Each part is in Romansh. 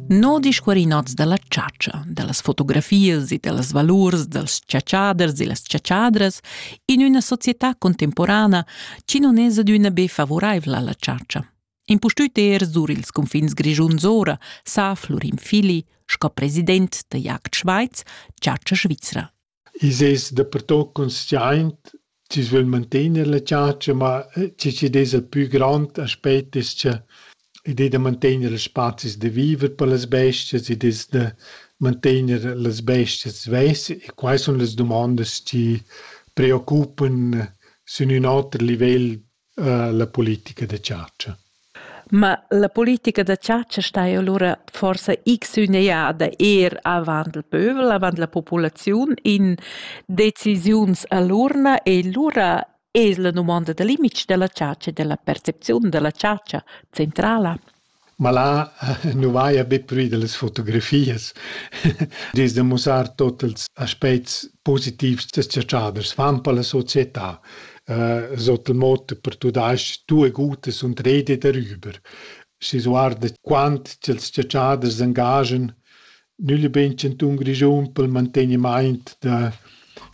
No discuorinots da la chatscha, da las fotografias e da las valurs dals chatschaders e las chatschadras in üna società contemporana chi non es adüna be favuraivla alla chatscha. Impustüt er sur ils cunfins grischuns ora sa Florin Fili sco president da Jagd Schweiz chatscha svizra. I's es dapertuot consciaint chi's vögl mantegner la chatscha, ma chi chi'd esa pü grond aspet es cha id es da mantegner ils spazis da viver per las bestias, id es da mantegner las bestias svess e quai sun las dumandas chi preoccupan sün ün oter livel la politica da chatscha. Ma la politica da chatscha sta allura forsa x üneada eir avant il pövel, avant la populaziun in decisiuns a l'urna e lura es la dumonda da limits da la chatscha e da la percepziun da la chatscha centrala. Ma là nu vaja be prü da las fotografias. Dis da mussar tuot ils aspets positivs da s-chatschaders fan per la società. Sot il motto per tumasch tue Gute sunt rede darüber. Schi s'guarda quant cha'ls s-chatschaders s'angaschan Nügl e bein chantun Grischun pel mantegnimaint da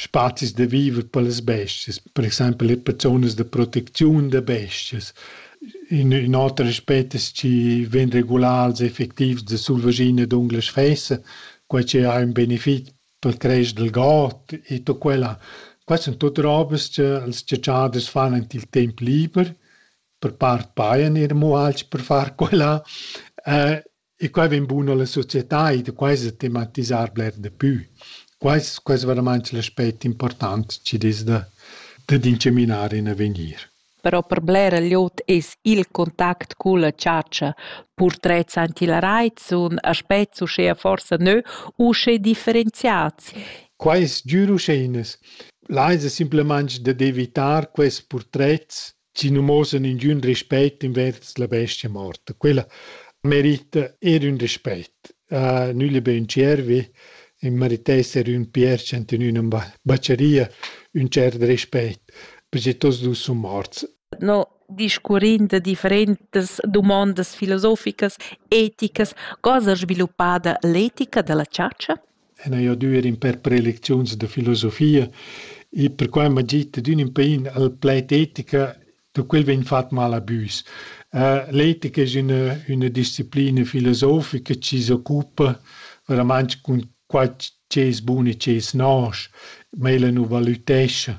spazis da viver per las bestias, per exaimpel eir per zonas da protecziun da bestias. In ün oter aspet es chi vegn regulars e effectivs da sulvaschina e d'unglas fessa, quai chi ha ün benefit pel cresc dal god e tut quella. Quai sun tuot robas cha ils chatschaders fan ant il temp liber, per part pajan eir amo alch per far quella. E quai vegn bun alla società e da quai sa tematisar bler da pü. Quais quais veramaint l'aspect important chi'd es da dad incaminar in avegnir. Però per blera glieud es il contact culla chatscha, purtrets antilarait sun aspets uschea forsa nö usche differenziats. Quai es giür uschè inas. Là esa simplamaing dad evitar quels purtrets si non mosan ingün rispett invers la bestia morta. Quella merita eir ün rispett. Uh, nügli be ün tschiervi, in meritess eir ün pierch ant in üna baceria, ün tschert rispett, perche tots dus sun morts. No discurrind de differentas dumondas filosoficas, eticas, cosa sviluppada l'etica della chatscha? en hai adüer in pêr prelecziuns da filosofia e perquai m'ha git dad ün ün pain al plaid etica da quel vegn fat mal a büs. L'etica es üna üna disciplina filosofica chi s'occupa veramaing cun qua chi es bun e chi es nosch, ma ella nu valütescha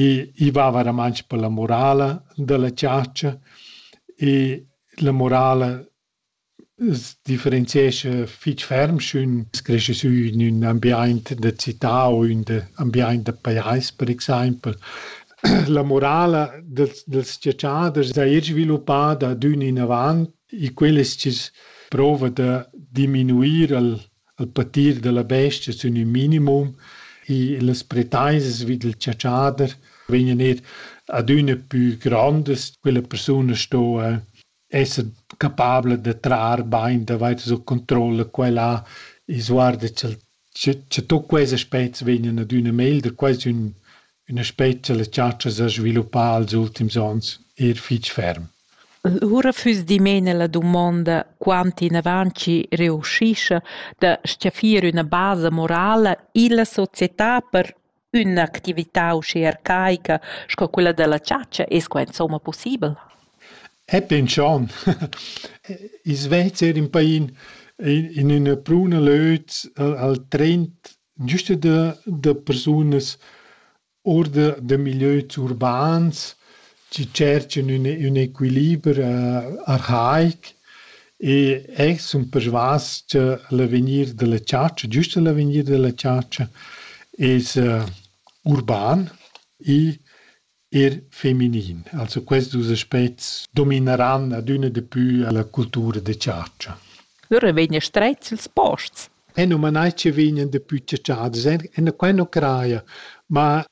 e i va veramaing per la morala da la chatscha e la morala Es differenziescha fich ferm sch'ün es creschi sü in ün ambiaint da cità u ün ambiaint da pajais per exaimpel. La morala dals dals dschatschaders saja sviluppada adün inavant e quel es chi's prouva da diminuir al al patir da la bestia sün ün minimum e las pretaisas vi dal chatschader vegnan eir adüna pü grondas, quella persuna sto esser capabla da trar bain davart sut controlla quella e sguarda cha'l cha cha tuot quels aspets vegnan adüna meglder, quasi ün ün aspet cha la chatscha s'ha sviluppà als ultims ons eir fich ferm. Lura füss dimena la dumonda quant inavant chi reuschischa da s-chaffir üna basa morala illa società per Ün'actività uschè arcaica sco quella da la chatscha es qua insomma pussibel? Epi ün tschon. I Svezia ün pain in üna pruna löt al trend güsta da da persunas our da da milieus urbans chi tscherchan ün, ün equiliber arhaic e eh sun persvas cha l'avegnir da la chatscha, giüst l'avegnir da la chatscha es urban e eir feminin. Also questi dus aspets domineran adüna di pü la cultura da chatscha. Lura vegnan strets ils posts. E nu manai chi vegnan dapü chatschadas, e quai nu craja, ma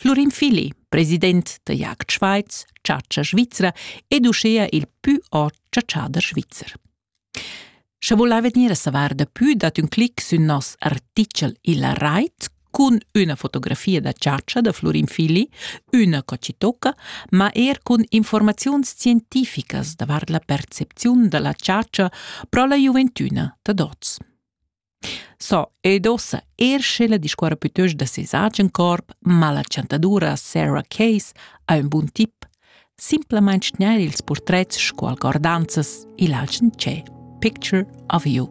Flurin Fili, president da Jagd Schweiz, chatscha svizra ed uschea il pü ot chatschader svizzer. Sche volai vegnir a savar da pü dat ün clic sün nos artichel illa rait cun üna fotografia da chatscha da Flurin Fili, üna cocitocca, ma er cun informaziuns scientificas davart la percepziun da la chatscha pro la giuventüna da dots. So, ed ussa er sche la discuorra pütöst da seis agen corp, ma la chantadura Sarah Case ha ün bun tip, simplamaing tgnair ils purtrets scu algordanzas i'l agen tschè Picture of You.